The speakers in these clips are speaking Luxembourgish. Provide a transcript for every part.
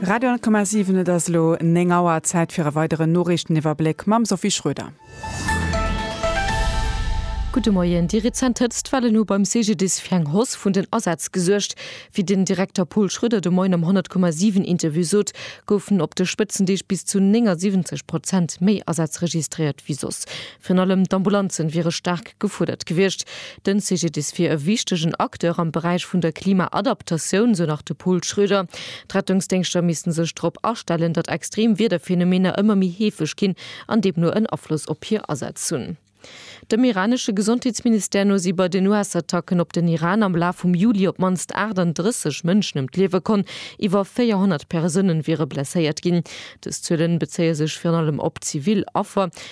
Radio 10,7, Et ass elo 9 Auer, Zäit fir e weideren Noriichteniwwerbléck mam Sophie Schröder. Gudde Moien, Déi rezent Hëtztwellen hu beim CGDIS fir eng Hausse vun den Asätz gesuergt. Wéi den Direkter Paul Schröder de Moien am 100,7 Interview sot, goufen op de Spëtzendeeg bis zu 79 Prozent méi Asätz registréiert wéi soss. Virun allem d'Ambulanzen wiere staark gefuerdert gewiescht. Den CGDIS wier e wichtegen Acteur am Beräich vun der Klimaadaptatioun, sou nach de Pol Schröder. D'Rettungsdéngschter missten sech drop astellen, datt extrem Wiederphänomener ëmmer méi heefeg ginn an deemno en Afloss op hir Asätz hunn. Dem iranesche Gesondheetsministère no si bei den US-Attacken op den Iran am Laf vum Juli op d'mannst 38 Mënschen ëm d'Liewe komm. Iwwer 400 Persounen wiere blesséiert ginn. Dës Zuelen bezéie sech virun allem op zivil Affer.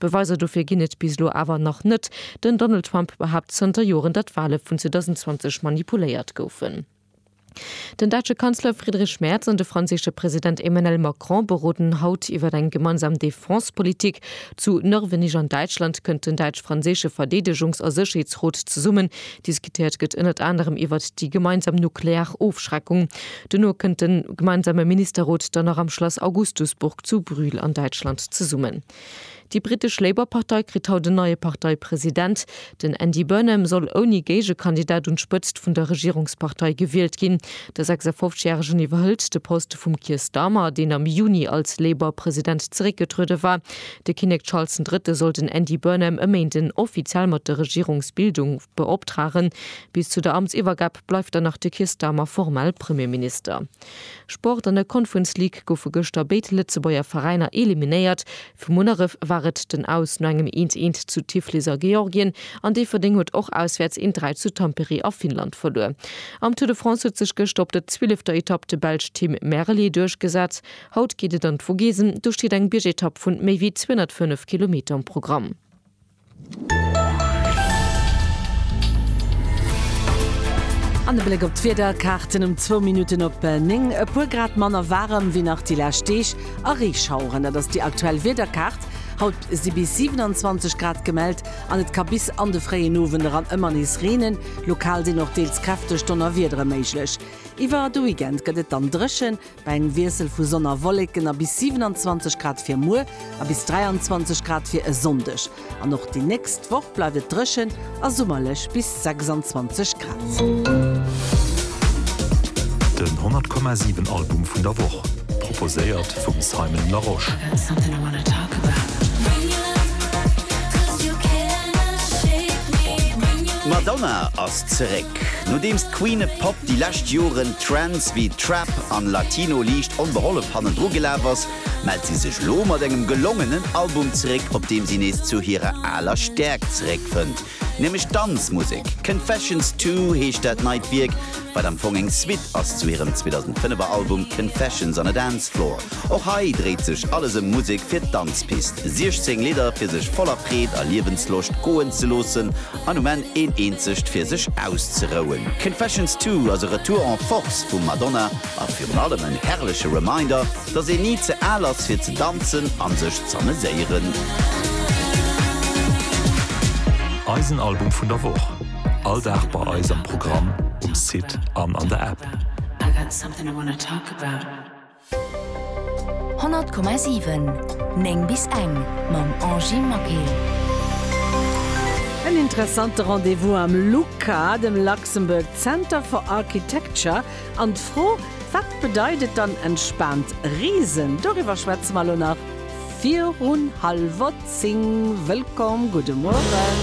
Beweiser dofir ginn et bis elo awer nach net. Den Donald Trump behaapt zënter Joren, datt d'Wale vun 2020 manipuléiert goufen. Den däitsche Kanzler Friedrich Merz an de franséische President Emmanuel Macron beroden haut iwwer eng gemeinsam Defense-Politik. Zu Nörvenich an Däitschland kënnt den däitsch-franséische Verdeedegungs a Sécherheetsrot zesummen, Diskutéiert gëtt ënnert anerem iwwert déi gemeinsam nuklear Ofschreckung. Duerno kënnt de gemeinsame Ministerrot dann nach am Schlass Augustusburg zu Brühl an Däitschland zesummen. Déi brittesch Labour-Partei kritt haut en neie Parteipresident. Den Andy Burnham soll ouni Géigekandidat un d'Spëtzt vun der Regierungspartei gewielt ginn. De 56 Järegen iwwerhëlt de Poste vum Keir Starmer, deen am Juni als Labour-President zeréckgetruede war. De Kinnek Charles den Drëtte soll den Andy Burnham e Méinden offiziell mat der Regierungsbildung beoptragen. Bis zu der Amtsiwwergab bleift dann nach de Keir Starmer formell Premierminister. Sport, An der Conference League goufe gëschter béid Lëtzebuerger Veräiner eliminéiert. Vu Munneref war et den Aus no engem eent, eent zu Tiflis a Georgien an Déifferdeng huet och auswäerts een Dräi zu Tampere a Finnland verluer. Am Tour de France huet sech gëschter op der zwielefter Etapp de Belsch Tim Merlier duerchgesat. Haut geet et an d'Vogesen, do steet eng Biergetapp vun méi wéi 205 Kilometer um Programm. An e Bléck op d'Wiederkaarten um zwou Minutten op 9. E puer Grad manner waarem wéi nach déi lescht Deeg a Reeschaueren. Dat ass déi aktuell Wiederkaart. Haut si bis 27 Grad gemellt an et ka bis an de fréien Owend eran ëmmer nees reenen. Lokal sinn och deels kräfteg Donnerwiedere méiglech. Iwwer de Weekend gëtt et dann dréchen, Bei engem Wiessel vu Sonn a Wolleken a bis 27 Grad fir muer a bis 23 Grad fir e Sonndeg. An och déi nächst Woch bleift et dréchen a summerlech bis 26 Grad. Den 100 Komma 7 Album vun der Woch, proposéiert vum Simon Larosche. D'Madonna ass zeréck! Nodeems d'Queen et Pop déi lescht Joren Trends wéi Trap an Latino liicht onbehollef hannendru gelaf ass, mellt si sech lo mat engem gelongenen Album zeréck, op deem si nees zu hirer aler Stäerkt zeréckfënnt, nämlech d'Danzmusek. Confessions Two heescht dat neit Wierk, wat am Fong eng Suite ass zu hirem 2005 er Album Confessions on a Dance Floor. Och hei dréit sech alles ëm Musek fir d'Danzpist, 16 Lidder fir sech voller Freed a Liewensloscht goen ze loossen an um Enn een eenzegt fir sech auszerouen. Confessions Two ass e Retour en Force vum Madonna a virun allem en herrleche Reminder, dass een ni ze al ass fir ze danzen an sech z'ameséieren. Eisen Album vun der Woch, all Dag bei eis am Programm, um Site an an der App. 100,7 9 bis eng mam Angy Maquet. En interessante Rendez-vous am LUCA, dem Luxembourg Center for Architecture, an d'Fro, Wat bedeit et dann entspaant reesen? Doriwwer schwätze mer elo nach virun hallwer zéng. Wëllkomm, gudde Mueren.